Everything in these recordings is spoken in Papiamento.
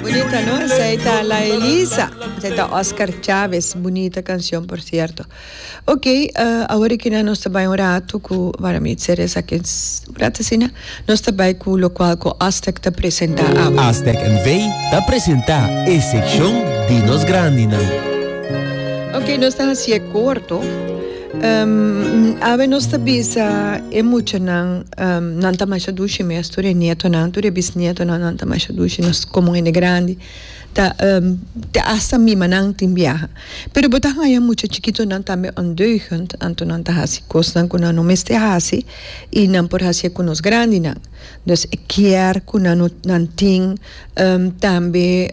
Bonita no esei ta la Elisa esei ta Oscar Chavez bonita canción por cierto ok uh, awor e kina nos ta bai un rato ku para mi ser esaki un rato asina nos ta bai ku lokual ku Aztec ta presenta awe. Aztec NV ta presenta e sekshon di nos grandinan. Ok nos ta hasié korto. Awe nos ta bisa e muchanan, nan ta masha dushi mes, tur e nietonan, tur e bisnietonan, nan ta masha dushi, nos komo hende grandi ta te hasta mimanan tin biaha. Pero bo ta haña mucha chikitonan tambe ondeugend, anto nan ta hasi kosnan ku nan no mester hasi i nan por hasié ku nos grandinan. Dus e kier ku nan no nan tin. Tambe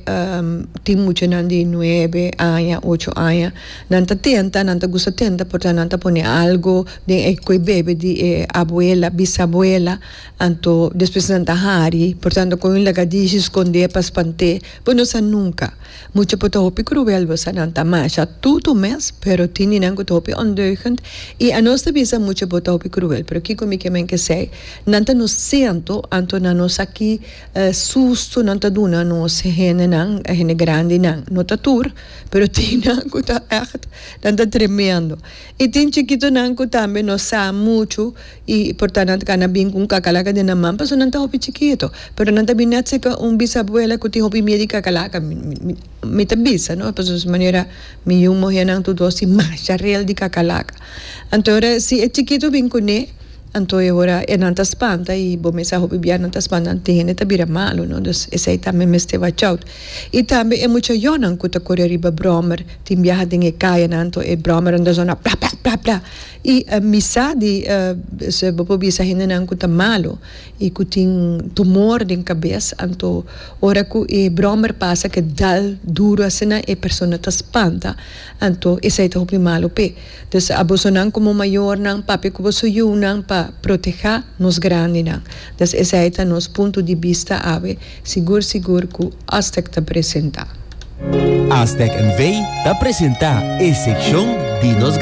tin muchanan di nuebe aña, ocho aña, nan ta tenta, nan ta gusta tenta por nan ta pone algo den e koe bebe di e abuela, bisabuela, anto despues nan ta hari, por tanto con un lagadishi sconde pa spant'e, bo no sa nunca, mucha por ta hopi cruel, bo sa, nan ta masha tutu mes, pero tin di nan cu ta hopi ondeugend, y anos ta bisa mucha bo ta hopi cruel, pero kico mi kier men ke esey, nan ta nos ciento, anto nan nos aki. E susto nan ta duna nos hendenan, e hende grandinan, no ta tur, pero tin nan ku ta ègt, nan ta tremendo. I tin chikitonan ku tambe no sa muchu i por ta nan ta kana bin ku un kakalaka den nan man pasobra nan ta hopi chikito. Pero nan ta bin nèt serka un bisabuela ku tin hopi mier di kakalaka. Mi ta bisa, no, pasobra su manera mi yu muhé nan tur dos tin masha rel di kakalaka. Anto si e chikito bin kuné. Anto e ora e nan ta spanta y bo mester a hopi bia nan ta spanta anto e hende ta bira malu no dus esey tambe mester watch out y tambe e muchayonan cu ta cori riba brommer tin biaha den e cayanan anto e brommer nan ta zona pla pla pla pla y misa di esey bo por bisa hendenan cu ta malu y cu tin tumor den cabes anto ora cu e brommer pasa ke dal duro asina e persona ta spanta anto esey ta hopi malu p'e. Dus a bosonan komo mayornan papia ku bo su yunan pa protehá nos grandinan. Dus esei ta nos punto di bista awe, sigur sigur ku Aztec ta presentá. Aztec NV. ta presentá e sekshon di nos.